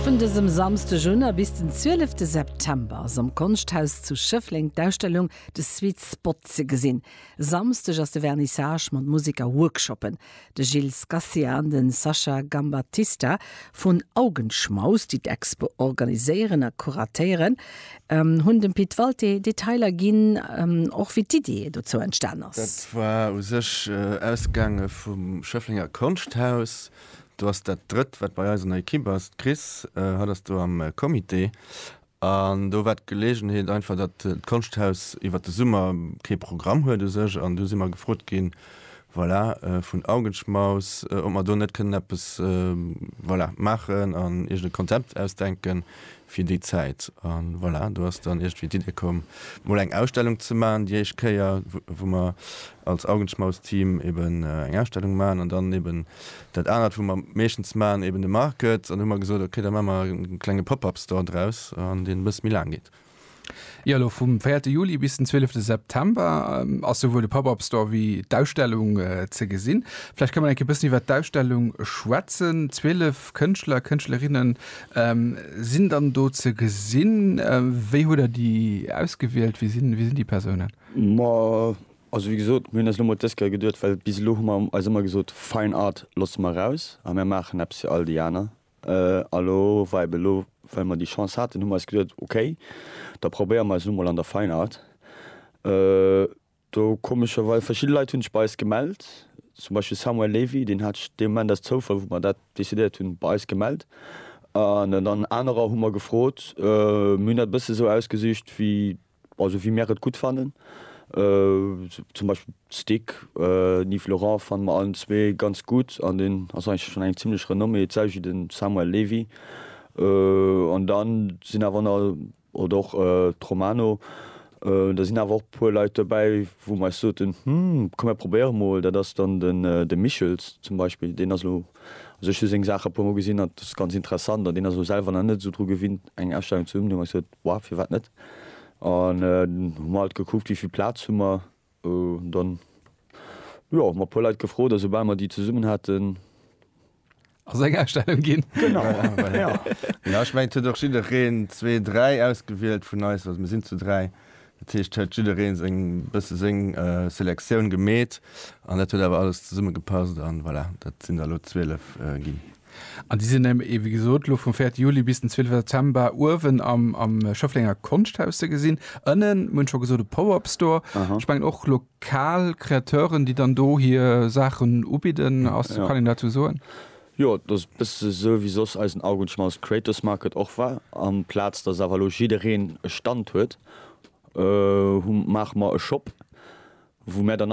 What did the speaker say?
Vun dësem Samsdeg un a bis den 12 de September ass am Konschthaus zu Schëffleng d'Ausstellung The Sweet Spot ze gesinn. E Samsdeg ass de Vernissage mat Musek a Workshoppen. De Gilles Scacia an de Sascha Gambattista vun Augenschmaus, déi d'Expo organiséieren a kuratéieren, hunn dem Pit Walté Detailer ginn, och wéi d'Iddie dozou entstan ass. Dat war u sech ausgaange vum Schëfflenger Konschthaus. Du ass dat drëtt, wat bei eis an der Ekipp ass. D'Chris, haut ass du am Comité. An do war d'Geleegenheet einfach, datt d'Konschthaus iwwer de Summer kee Programm huet u sech. An du si mer gefrot ginn, voilà, vun Augenschmaus, ob mer do net kënnen eppes, voilà, maachen an iergend e Konzept ausdenken, fir déi Zäit a voilà, do ass dann iergendwéi d'Idee komm, mol eng Ausstellung ze maachen, déi éischt Kéier, wou mer als Augenschmaus-Team eben eng Ausstellung maachen an dann eben dat anert, wou mer meeschtens maachen, eben de Market. An hu mer gesot, okay, da maache mer e klenge Pop-up-Store draus an deen e bësse méi laang geet. Jo, elo vum véierte Juli bis den zwielefte September ass souwuel de Pop-Up Store wéi d'Ausstellung ze gesinn. Vläicht ka mer nach e bëssen iwwert d'Ausstellung schwätzen. Zwielef Kënschtler a Kënschtlerinne sinn dann do ze gesinn. Wéi hutt der déi ausgewielt? Wie sinn déi Persounen? Ma also, wéi gesot, mir hunn eis elo mol dës Kéier geduecht, well bis elo hu mer eis ëmmer gesot, Fine Art loosse mer eraus a mir maachen eppes fir all déi aner. A lo war eben elo, well mer déi Chance haten, hu mer eis geduet, okay, da probéiere mer eis elo mol an der Feinart. Do komescherweis, verschidde Leit hunn sech bei eis gemellt, zum Beispill Samuel Lévy, deen hat sech dee Moment aus Zoufall, wou mer dat decidéiert hunn, bei eis gemellt. An dann anerer hu mer gefrot, mir hunn dat e bësse sou ausgesicht, wéi Also wéi mär et gutt fannen. Zum Beispill d'Stick den Yves Laurent fanne mer allen zwee ganz gutt an deen ass eigentlech schonn eng zimmlech Renommée, d'selwecht wéi de Samuel Levy. An da sinn awer na, oder och d'Romano, da sinn awer och e puer Leit dobäi, wou mer eis soten, hm, komm mär probéiere mol. Dat ass dann de Michels zum Beispill, deen ass elo, also ech hu seng Saache e puer mol gesinn an et ass ganz interessant an deen ass elo selwer nach net esou dru gewinnt eng Ausstellung ze hunn. Hu mer gesot, War, firwat net? An dann hu mer halt gekuckt, wéi vill Plaz hu mer. An dann, jo, hu mer e puer Leit gefrot a soubal mer déi zesummen haten. Ass eng Ausstellung ginn. Genau, jo. Jo, ech mengen, et huet och jiddereen zwee, dräi ausgewielt vun eis. Also mir sinn zu dräi. Dat heescht, et huet jiddereen seng, bësse seng Selektioun gemeet. An dat huet awer alles zesummegepasst. An voilà, dat sinn der elo zwielef ginn. An déi sinn eben, wéi gesot, elo vum 4 Juli bis den 12 September uewen am Schëfflenger Konschthaus ze gesinn. Ënnen, mir hunn et scho gesot, e Pop-Up-Store. Ech mengen och lokal Kreateuren, déi dann do hir Saachen ubidden. Ass, kann een dozou soen? Jo, et ass e bësse esou, wéi soss eisen Augenschmaus Creators Market och war. Amplaz datt awer elo jiddereen e Stand huet, hu, maache mer e Shop, wou mir dann,